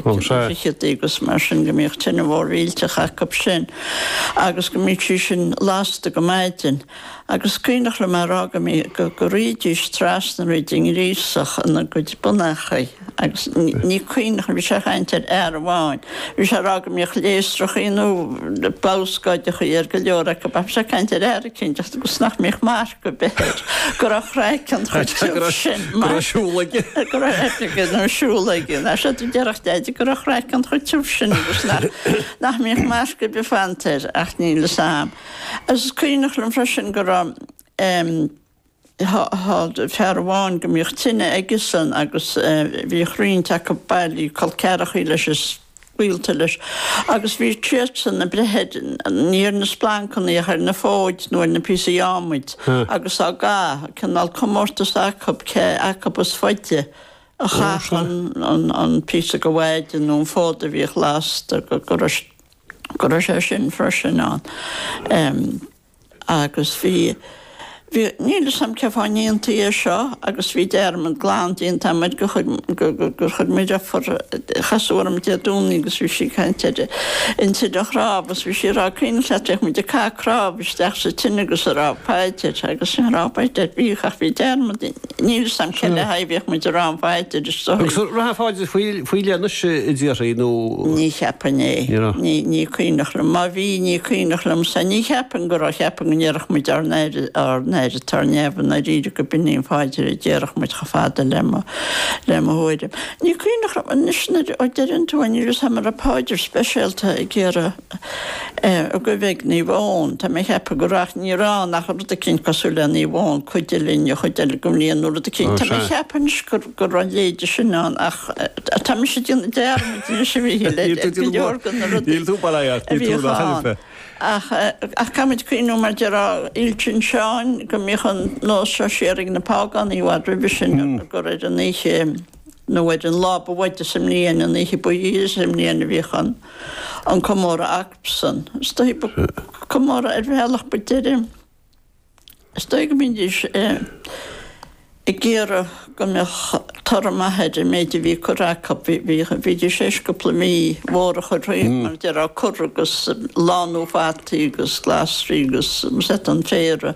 Ó sna sé. fichidí agus mar sin go mbíodh tine mhór mhillteach acu sin agus go mbíodh sí sin lasta go maidin agus is cuimhneach liom a' rá go mbí, go, go rithidís trasna thríd an ngríosach ina gcuid bonnachaí agus ní cuimhneach, bhí sé a' chaint ar fhear amháin, bhí sé a' rá go mbíodh léasrachaí nó balscóideachaí ar go leor acu ach bhí sé a' caint ar fhear eicínt agus go, 's nach mbíodh go b'fhéidir go raibh craiceann chomh tiubh sin mar. go raibh siúl aige. go raibh aip aige nó siúl aige. is dóigh deireadh Deaide go raibh craiceann chomh tiubh sin agus nach mbíodh marc ar bith fanta air ach níl fhios a'm. Is cuimhneach liom freisin go raibh fear amháin go mbíodh tine aigesan agus bhíodh roinnt acu ag bailiú col ceathrachaí leis gaolta leis, agus bhí siadsan in ann breith ní ar na splancannaí ach ar na fóid nó ar na píosaí adhmaid agus á gcaitheamh, cineál comórtas acu cé acu is faide a chaithfeadh an píosa go mhaide nó an fód a bhíodh lasta, go raibh sé sin freisin ann. Agus bhí, bhí, níl 'fhios a'm cén fáth a ndéantaí é seo agus bhí dearmad glan déanta a'm air gur chuir, gur chuir mo dheirfiúr, casadh orm Dé Domhnaigh agus bhí sí ag caint ar an tine chnámh agus bhí sí a' rá an cuimhneach leat bhíodh muid ag caitheamh cnámh isteach sa tine agus a' rá paidir agus a' rá paidir bhíodh ach bhí dearmad Níl 'fhios a'm cé le haghaidh a mbíodh muid a' rá an phaidir is dóigh. Agus an raibh paidir faoi leith anois a deirtí nó. Ní cheapfainn é. Ní raibh. Ní, ní cuimhneach liom. Má bhí, ní cuimhneach liomsa. Ní cheapfainn go raibh. Cheapfainn go ndéarfadh muid Ár nAthair, Ár nAthair atá ar Neamh, i ndáiríre gurb in í an phaidir a déarfadh muid chomh fada le mo, le mo thuairim. Ní cuimhneach liom anois nuair a deireann tú é níl 'fhios a'm an raibh paidir speisialta ag iarraidh, Eh, ag guibhe ag Naomh Eoin. Tá mé a cheapadh go raibh, ach ní raibh ann ach rud eicínt cosúil le Naomh Eoin, cuidigh linn an chuid eile gon mbliain nó rud eicínt. Tá mé a cheapadh anois gur, go raibh a leithide sin ann ach eh, tá mise a déanamh dearmaid anois a bhí le, le, le go leor go na rudaí. Níl tú balai ort, níl tú ach ainm fé. Ach eh, ach caithfimid cuimhniú mar a déarfá Fhéile tSin Seáin go mbíodh an nós seo siar ag na págánaigh i bhfad roimhe sin gur ar an oíche, nó ar an lá ab fhaide sa mbliain, an oíche ba ghiorra sa mbliain a bhíodh ann an comóradh acusan. Is dóigh ba comóradh ar bhealach ba deireadh. Is dóigh go mbídís ag iarraidh go mbeadh toradh maith ar an méid a bhí curtha acu. Bhídís théis cúpla mí mhór a chur thríd, mar a déarfá, cur agus lánú fataí agus glasraí agus sett an féir a.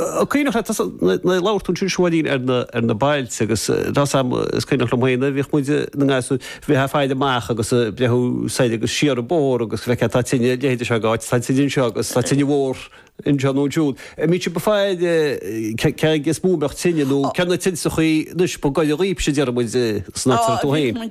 An cuimhneach leatsa nuair a labhair tú ansin ó shin ar na ar na bailte agus tá 'fhios a'm is cuimhneach liom féin nuair bhíodh muid na ngasúir bheifeá ag gabháil amach agus ag breathnú soir agus siar an bóthar agus go bhfeicfeá céard tá tine ina leithéide seo dh'áit tá tine anseo agus tá tine mhór anseo nó ansiúd an mbíodh sibh ag fáil cé cé aige is mó a mbeadh tine nó cé na tinte sa chaoi anois ba gaire dhaoibhse a deireadh muid san áit a raibh tú féin.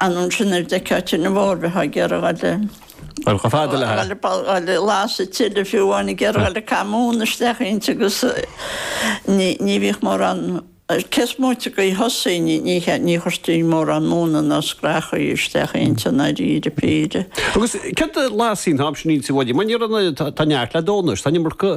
anonn sin ar deic áit ar na bhfórbheith á géarghá le. Ar chomh fada le. le fágáil le lasadh tine fiú amháin ag goil ag caitheamh móna isteach inti agus ní ní bhíodh mórán cé is móite go dtí thosaigh ní ní ní chuirtí mórán móna ná scraitheacha isteach inti i ndáiríre píre. Agus céard a lasfaí an t-am sin inti bhaile mar ní raibh na tá neart le dó anois tá nimir go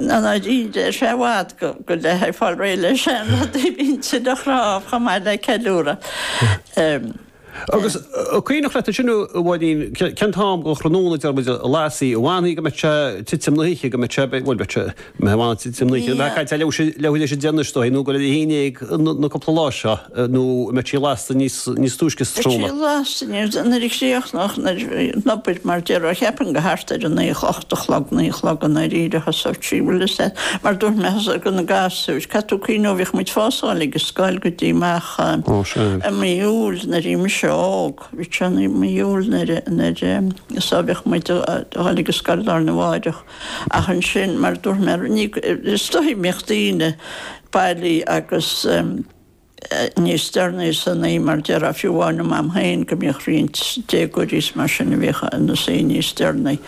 An oiread, ar sé, i bhfad go leáfaidh fáil réidh le seanrudaí a bhí an tine chnámh chomh maith le ceiliúradh. Agus an cuimhneach leat ansin, a Mháirín, cén t-am den thráthnóna, deir muid, a lasfaí, an bhfanfaí go mbeadh sé ag titim na hoíche, go mbeadh sé, bhuel, go mbeadh sé, go mbeadh sé ag fanacht titim na hoíche. Tá leathuair tar éis a deich anois, is dóigh, nó go dtí a haon déag na cúpla lá seo? nó an mbeadh sí lasta níos túisce sa tráthnóna? Bheadh sí lasta níos túisce nuair a chríochnódh an obair mar déarfá cheapfainn go thart ar a naoi a chlog, a chlog, naoi a chlog i ndáiríre a thosódh sí. Bhuel is ea, mar dúirt mé thosóidh go na gasúir, caithfidh tú cuimhneamh bhíodh muid fós a dhul ag an scoil go dtí amach i mí Iúil nuair a bhí mise óg, bhí sé i mí Iúil nuair a, so bhíodh muid a dhul ag an scoil lá arna mháireach ach ansin mar dúirt mé ní, is dóigh go mbíodh daoine bailithe agus. níos deireanaí san oíche mar déarfá fiú amháin le m'am féin go mbíodh roinnt déagóirí is mar sin a bhíodh ina suí níos deireanaí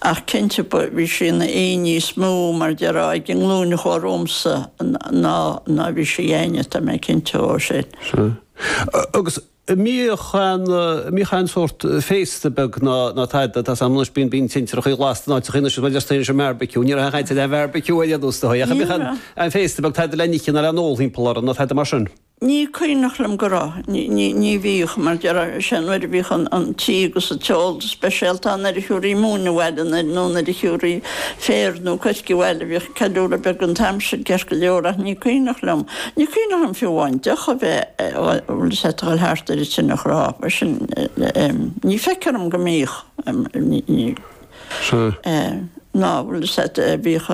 ach cinnte bhí sí ina hoíche níos mó mar déarfá ag an nglúin a chuaigh romhamsa ná ná bhí sí ag éinne tá mé cinnte ó shin. Sea. Agus An mbíodh, an mbíodh aon sórt féasta beag ná tada atá ann anois, bíonn, bíonn tintreacha lasta in áiteacha anois, mar déarfainn anois an mbeárbaiciú, ní raibh a dhath le beárbaiciú a dhéanamh astu, ach an mbíodh aon féasta beag, tada le n-ithe ná le n-ól thimpeall uirthi ná tada mar sin. Ní cuimhneach liom go raibh, ní, ní, ní bhíodh, mar déarfá, sé nuair a bhíodh an, an t-ithe agus an t-ól go speisialta ann nuair a thiúrfaí móin abhaile nó nuair a thiúrfaí féar nó coirce abhaile, bhíodh, Ceiliúradh beag an t-am sin ceart go leor ach ní cuimhneach liom, ní cuimhneach liom fiú amháin deoch a bheith, bhfuil 'fhios a'd, ag dul thart ar an tine chnámh, mar sin, ní fheictear dhom go mbíodh, ná bhfuil 'fhios a'd, bhíodh,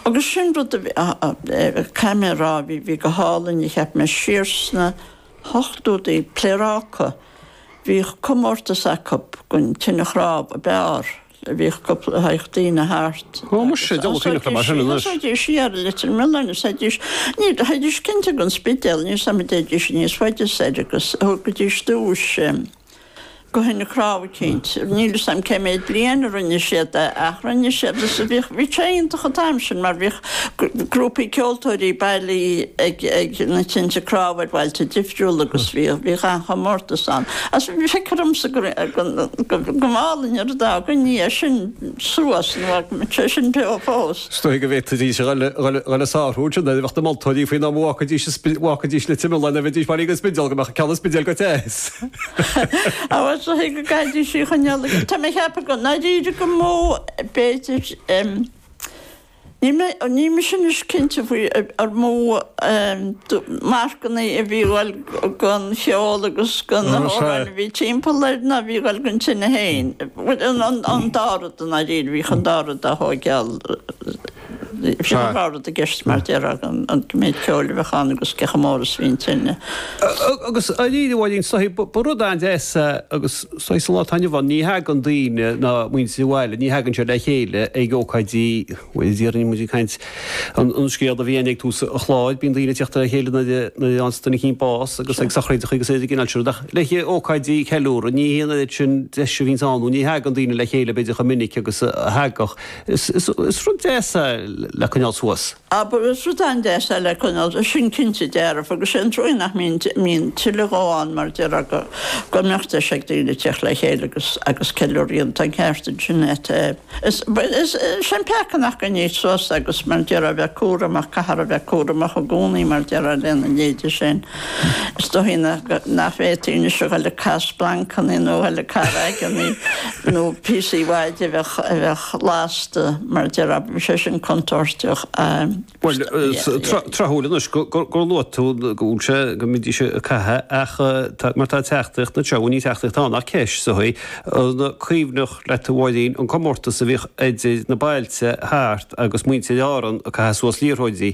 agus sin rud a bhí, caithfidh mé a rá, bhí, bhí go hálainn a cheap mé siar sna hochtóidí, Pléaráca, bhíodh comórtas acu gon tine chnámh a b'fhearr. Bhíodh cúpla théadh daoine thart agus théidís siar go Leitir Mealláin is théidís, ní, théidís cinnte gon Spidéal, níl 'fhios a'm an dtéidís níos faide soir agus thugaidís duais go thine chnámh cinnte. Níl 'fhios a'm cé méid bliain a rinne siad é ach rinne siad is bhíodh, bhí sé iontach an t-am sin mar bhí, grúpaí ceoltóirí bailí ag na tinte cnámh ar bhailte difriúla agus bhíodh an-chomórtas ann. Feictear dhomsa go mb'álainn an rud dá gcoinneofaí sin suas nó tá sé sin beo fós. Is dóigh go bhféadfaidís a dhul ag sárú ansin nuair a bheadh na moltóirí faoi nach mbacfaidís le tine lae nuair a bheidís bailí go Spidéal, go mbeadh ceann i Spidéal go te. Á, is dóigh go gcaithfidís í a choinneáil. Tá mé ag ceapadh i ndáiríre gur mó b'fhéidir. Níl mise anois cinnte faoi ar mó marcanna a bhí ag dul gon cheol agus go na hamhráin a bhí timpeall air ná a bhí ag dul gon tine féin. An dá rud i ndáiríre, bhíodh an dá rud á thóigeáil, bhí an dá rud i gceist mar déarfá, an méid ceoil a bheadh ann agus cé chomh mór is a bhí an tine. Agus éirí abhaile ag an soithigh, ba rud an-deas é agus Sea, sa lá atá inniu ann. Ní thagann daoine ná muintir an bhaile, ní thagann siad le chéile ag ócáidí, bhuel déarfainn muid ag caint, an scéal a bhí againn ag tús an chláir, bíonn daoine ag teacht le chéile nuair a fhaigheann duine eicínt bás agus ag sochraídeacha agus ag an gcineál sin rud ach le ócáidí ceiliúradh ní hé an oiread sin deis a bhíonns ann nó ní thagann daoine le chéile b'fhéidir chomh minic agus a thagadh. Is rud deas é le coinneáil suas. Á ba rud an-deas é le coinneáil, sin cinnte dearfa agus sé an trua nach mbíonn mbíonn tuilleadh dhó ann mar déarfá go go mbeadh deis ag daoine teacht le chéile agus agus ceiliúradh ann, tá an ceart ansin a't. Is is sé an peaca nár coinníodh suas agus mar déarfá a bheith cúramach caithfear a bheith cúramach i gcónaí mar déarfá lena leithéide sin. Is dóigh nach bhféadfaí anois a dhul ag caitheamh splancanna nó a dhul ag caitheamh raigeanna nó píosaí éadaigh a bheadh lasta, mar déarfá, bhí sé sin contúirteach. Bhuel, tráthúil anois gur luaigh tú go bhfuil sé, go mbídís ag caitheamh ach tá, mar tá teachtaireacht anseo, bhuel ní teachtaireacht ann ach ceist sa chaoi an cuimhneach leat a Mháirín an comórtas a bhíodh idir na bailte thart agus muintir Árann ag caitheamh suas liathróidí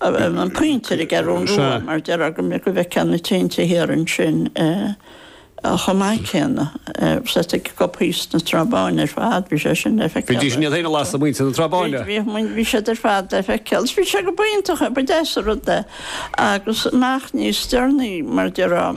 An Pointe ar an gCeathrú Rua mar déarfá go bhfeicfeá na tinte thiar ansin chomh maith céanna. Sea, agus píosa na Trá Báine ar fad, bhí sé sin le feiceáil. Bhí, bhí sin iad féin a lasadh, muintir na Trá Báine. Bhí, bhí, bhí siad ar fad le feiceáil is bhí sé go b'iontach é, ba deas an rud é. Agus amach níos deireanaí mar déarfá,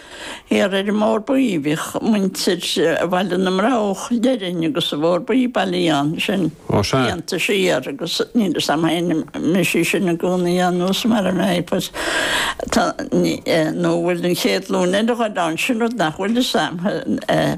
Thiar ar an mBóthar Buí bhíodh muintir Bhaile na mBroghach déarfainn agus an Bhóthair Bhuí bailí ann sin Ó sea. blianta siar agus níl fhios a'm fhéin an mbeidh sí sin i gcónaí ann nós mar a bheidh pois tá ní eh nó bhfuil an chéad ghlúin eile ag dul ann sin rud nach bhfuil fhios a'm eh.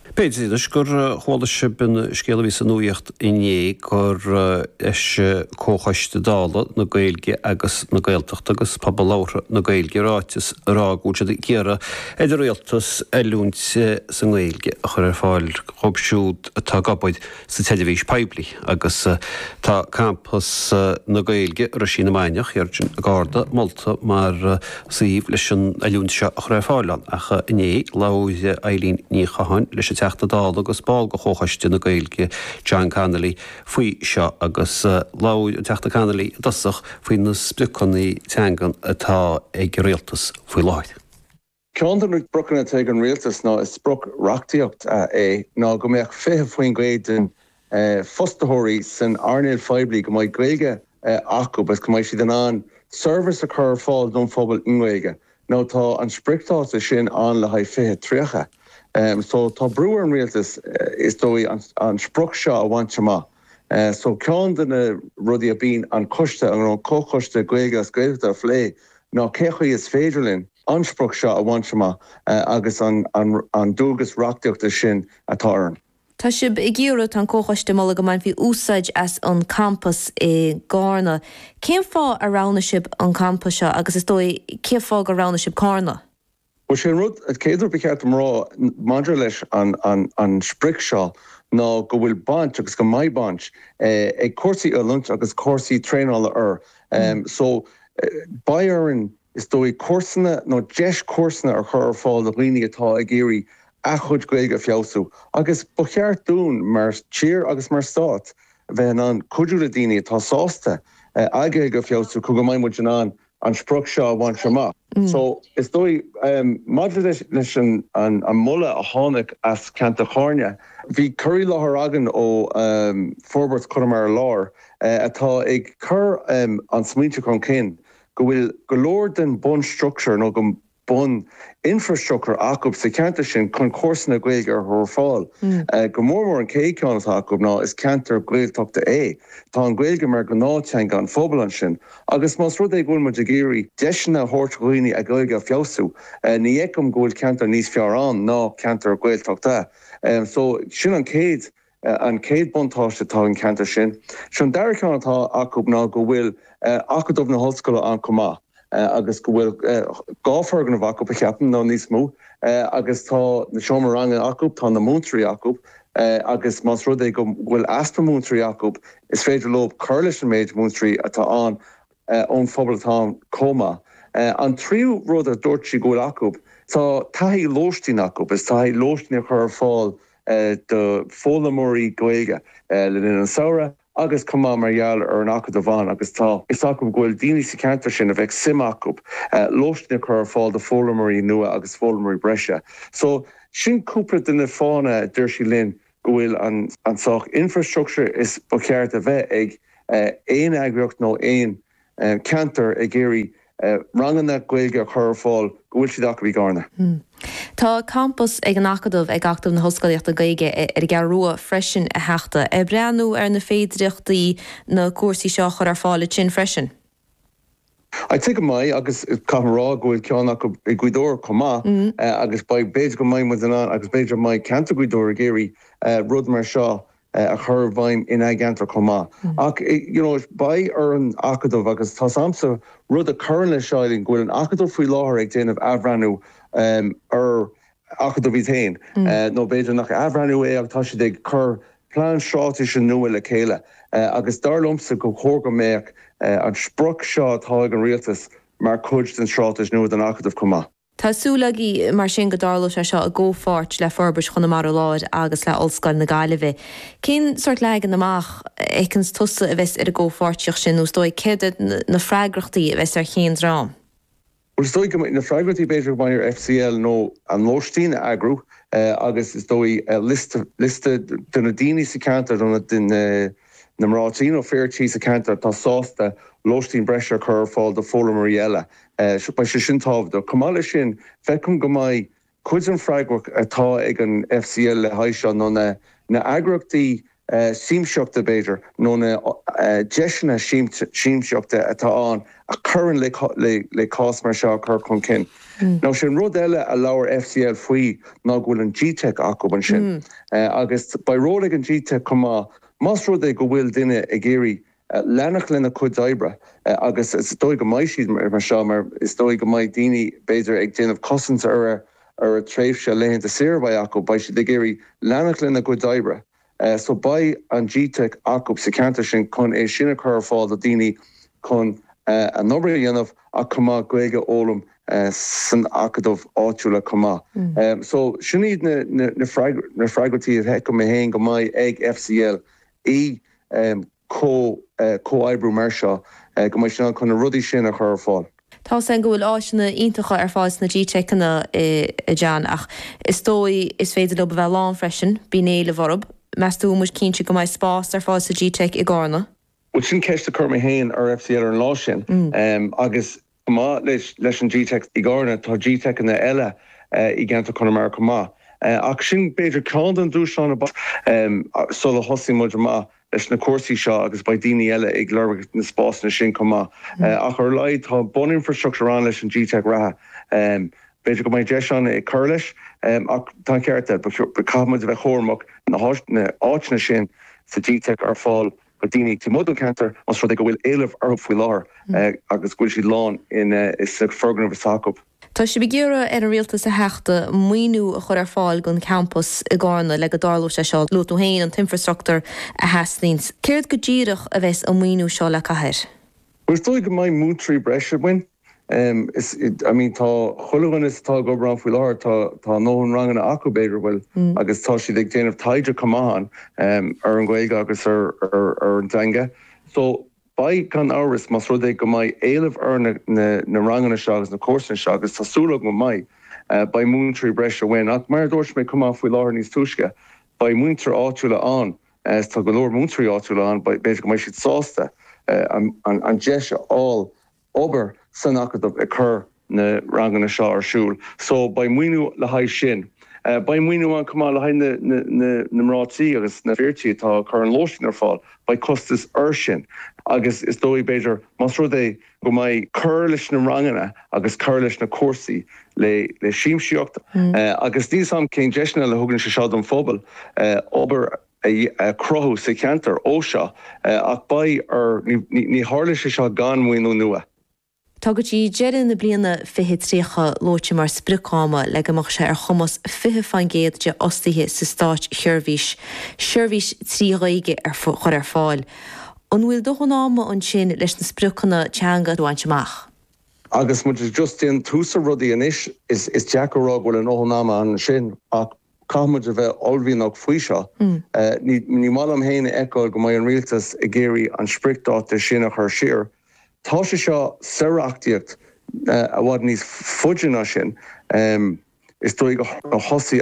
B'fhéidir, anois gur chuala sibh an scéal a bhí sa nuacht inné gur eisigh Comhchoiste Dála na Gaeilge agus na Gaeltachta agus Pobal Labhartha na Gaeilge ráiteas ag rá go bhfuil siad ag iarraidh ar an Rialtas oiliúint sa nGaeilge a chur ar fáil dhób siúd atá ag obair sa tseirbhís poiblí agus tá Campas na Gaeilge, Roisín na Mainiach, thiar i gCárna, molta mar suíomh leis an oiliúint seo a chur ar fáil ann. Ach inné, labhair Eilín Ní Chatháin leis an Teachta Dála agus ball de Chomhchoiste na Gaeilge, John Connolly, faoi seo agus labhair an Teachta Connolly i dtosach faoi na spriocanna teanga atá ag an Rialtas faoi láthair. Ceann de na spriocanna atá ag an Rialtas ná is sprioc reachtaíocht é ná go mbeadh 20% den fostaitheoirí san earnáil phoiblí go mbeidh Gaeilge acu agus go mbeidh siad in ann seirbhís a chur ar fáil don phobal i nGaeilge nó tá an spriocdháta sin ann le haghaidh 2030 so tá brú ar an Rialtas is dóigh an sprioc seo a bhaint amach. So ceann de na rudaí a bíonn an coiste, an comhchoiste Gaeilge agus Gaeltachta a phlé ná cé chaoi is féidir linn an sprioc seo a bhaint amach agus an dualgas reachtaíochta sin atá orainn. Tá sibh ag iarraidh, tá an comhchoiste ag moladh go mbainfí úsáid as an campas i gCárna. Cén fáth ar roghnaigh sibh an campas seo agus is dóigh cén fáth gur roghnaigh sibh Cárna? Bhuel, sé an rud, céad rud ba cheart dom a rá maidir leis an sprioc seo ná go bhfuil baint, agus go mbeidh baint, ag cúrsaí oiliúint agus cúrsaí traenála air. So, beidh orainn, is dóigh, cúrsanna nó deis cúrsanna a chur ar fáil do dhaoine atá ag iarraidh a chuid Gaeilge a feabhsú agus ba cheart dúinn mar tír agus mar stát bheith in ann cuidiú le daoine atá sásta a Gaeilge a feabhsú chun go mbeidh muid in ann an sprioc seo a bhaint amach. So, is dóigh, maidir leis an moladh a tháinig as ceantar Chárna, bhí cur i láthair againn ó Forbairt Chonamara Láir atá ag cur an smaointe chun cinn go bhfuil go leor den bhunstruchtúr nó bun-infreastruchtúr acu sa cheantar sin chun cúrsanna Gaeilge a chur ar fáil. Go mór mór an chéad cheann atá acu ná is ceantar Gaeltachta é. Tá an Ghaeilge mar ghnáth teanga an phobail ansin agus más rud é go bhfuil muid ag iarraidh deiseanna a thabhairt do dhaoine a Ghaeilge a feabhsú ní fheicim go bhfuil ceantar níos fearr ann ná ceantar Gaeltachta. So sin an chéad an chéad buntáiste atá ag an cheantar sin. Sé an dara ceann atá acu ná go bhfuil Acadamh na hOllscoile ann chomh maith agus go bhfuil dhá foirgneamh acu, a cheapaim, nó níos mó agus tá na seomra ranga acu, tá na múinteoirí acu agus más rud é go bhfuil easpa múinteoirí acu is féidir leo cur leis an méid múinteoirí atá ann. ón phobal atá ann chomh maith. An tríú rud a dúirt sí go bhfuil acu, tá taithí lóistín acu, is taithí lóistín a chur ar fáil do foghlaimeoirí Gaeilge le linn an samhraidh agus chomh maith mar gheall ar an Acadamh ann agus tá a fhios acu go bhfuil daoine sa cheantar sin a bheadh suim acu lóistín a chur ar fáil do foghlaimeoirí nua agus foghlaimeoirí breise. So sin cúpla de na fáthanna a dúirt sí linn go bhfuil an saghas infreastruchtúr is ba cheart a bheith ag aon eagraíocht nó aon cheantar ag iarraidh ranganna Gaeilge a chur ar fáil, go bhfuil siad acu i gCarna. Tá campas ag an Acadamh ag Acadamh na hOllscolaíochta Gaeilge ar an gCeathrú Rua freisin a Theachta. Ar breathnaíodh ar na féidireachtaí na cúrsaí seo a chur ar fáil ansin freisin? A tuigim go maith agus caithfidh mé a rá go bhfuil ceann acu i nGaoth Dobhair chomh maith agus beidh, b'fhéidir go mbeidh muid in ann agus b'fhéidir go mbeidh ceantar Ghaoth Dobhair ag iarraidh rud mar seo a chur i bhfeidhm in a gceantar chomh maith. Ach you know beidh ar an Acadamh agus tá a fhios agamsa rud a chuireann leis seo go bhfuil an Acadamh faoi láthair ag déanamh athbhreathnú ar acadamh é féin, nó b'fhéidir nach athbhreathnú é ach tá siad ag cur plean stráitéise nua le chéile agus dar liomsa gur chóir go mbeadh an sprioc seo atá ag an rialtas mar chuid den stráitéis nua don acadamh chomh maith. Tá súil agaibh mar sin go dtarlóidh sé seo i gcomhpháirt le Forbairt Chonamara Láir agus le Ollscoil na Gaillimhe. Cén sort leagan amach a fheiceanns tusa a bheas ar an gcomhpháirtíocht sin nó is dóigh céard iad na freagrachtaí a bheas ar chén dream? Bhuel, is dóigh go mbeidh na freagrachtaí b'fhéidir go mbeidh ag FCL nó an lóistín a eagrú agus is dóigh liosta, liosta de na daoine sa cheantar, de na, de na, na mná tí nó fir tí sa cheantar atá sásta lóistín breise a chur ar fáil do foghlaimeoirí eile. Beidh sé sin tábhachtach. Chomh maith leis sin, feicim go mbeidh Cuid den freagracht atá ag an FCL le haghaidh seo ná na heagraíochtaí siamsaíochta, b'fhéidir, nó na deiseanna siamsaíochta atá ann a chuireann le cúrsa mar seo a chur chun cinn. Nó sin rud eile a labhair FCL faoi ná go bhfuil an G-Teic acu ansin agus beidh ról ag an G-Teic chomh maith más rud é go bhfuil duine ag iarraidh leanacht lena gcuid oibre agus is dóigh go mbeidh siad mar seo mar is dóigh go mbeidh daoine b'fhéidir ag déanamh cosaint ar a tréimhse laethanta saoire a bheidh acu, beidh siad ag iarraidh leanacht lena gcuid oibre so beidh an G-Teic acu sa cheantar sin chun é sin a chur ar fáil do daoine chun a n-obair a dhéanamh ach chomh maith Gaeilge a fhoghlaim san acadamh áitiúla chomh maith. So sin iad na freagrachtaí a fheicim mé féin go mbeidh ag FCL ii, Comhoibriú mar seo go mbeidh sé in ann chun na rudaí sin a chur ar fáil. Tá a fhios againn go bhfuil áiseanna iontacha ar fáil sna G-Teiceanna, a John, ach is dóigh is féidir leo a bheith lán freisin. Bíonn éileamh orthu. Meas tú an bhfuil muid cinnte go mbeidh spás ar fáil sa G-Teic i gCarna? Bhuel, sin ceist a chuir mé féin ar FCL ar an lá sin agus Chomh maith leis an Gteic i gCarna, tá Gteiceanna eile i gceantar Chonamara chomh maith. Ach sin b'fhéidir ceann den dúshlán ab fhearr sula dtosaíonn muid amach leis na cúrsaí seo agus beidh daoine eile ag lorg na spásanna sin chomh maith. Ach ar a laghad tá buninfreastruchtúr ann leis an Gteic reatha. B'fhéidir go mbeidh deis ann a chur leis ach tá an ceart aige. Caithfidh muid a bheith cúramach na háiteanna sin sa nGteic ar fáil Do dhaoine timpeall an cheantair más rud é go bhfuil éileamh orthu faoi láthair agus go bhfuil siad lán sna foirgnimh atá acu. Tá sibh ag iarraidh ar an rialtas a theacht, maoiniú a chur ar fáil don champas i gCarna le go dtarlóidh sé seo. Luaigh tú féin an t-infreastruchtúr a theastaíonn. Céard go díreach a bheas an maoiniú seo le caitheamh air? Bhuel is dóigh go mbeidh múinteoirí breise againn. Is, I mean tá chuile dhuine atá ag obair ann faoi láthair, tá a ndóthain ranganna acu b'fhéidir, bhuel agus tá siad ag déanamh taighde chomh maith ann ar an Ghaeilge agus ar an dteanga. So beidh gan amhras más rud é go mbeidh éileamh ar na ranganna seo agus na cúrsaí seo, agus tá súil agam go mbeidh, beidh múinteoirí breise uainn ach mar a dúirt mé chomh maith faoi láthair níos túisce, beidh múinteoirí áitiúla ann, tá go leor múinteoirí áitiúla ann, b'fhéidir go mbeidh siad sásta an deis a fháil. obair san Acadamh ag cur na ranganna seo ar siúl so beidh maoiniú le haghaidh sin. Beidh maoiniú ann chomh maith le haghaidh na mban tí agus na fir tí atá ag cur an lóistín ar fáil. Beidh costas ar sin agus is dóigh b'fhéidir más rud é go mbeidh cur leis na ranganna agus cur leis na cúrsaí eile siamsaíochta agus níl 's agam cén deiseanna a thugann sé seo don phobal obair a chruthú sa cheantar ó seo ach beidh ar Ní tharlóidh sé seo gan maoiniú nua. Tá go dtí deireadh na bliana 2030 luaite mar sprioc ama le go mbeadh sé ar chumas 20% de fhostaithe sa státseirbhís seirbhís trí Ghaeilge a chur ar fáil. An bhfuil dóthain ama ansin leis na spriocanna teanga a bhaint amach? Agus muid just i dtús rudaí anois, is deacair a rá go bhfuil a ndóthain ama ansin ach Caithfimid a bheith uaillmhianach faoi seo. Ní mhaith liom féin a fheiceáil go mbeidh an rialtas ag iarraidh an spriocdháta sin a chur siar. Tá sé seo sa reachtaíocht i bhfad níos faide ná sin is dóigh. Thosaigh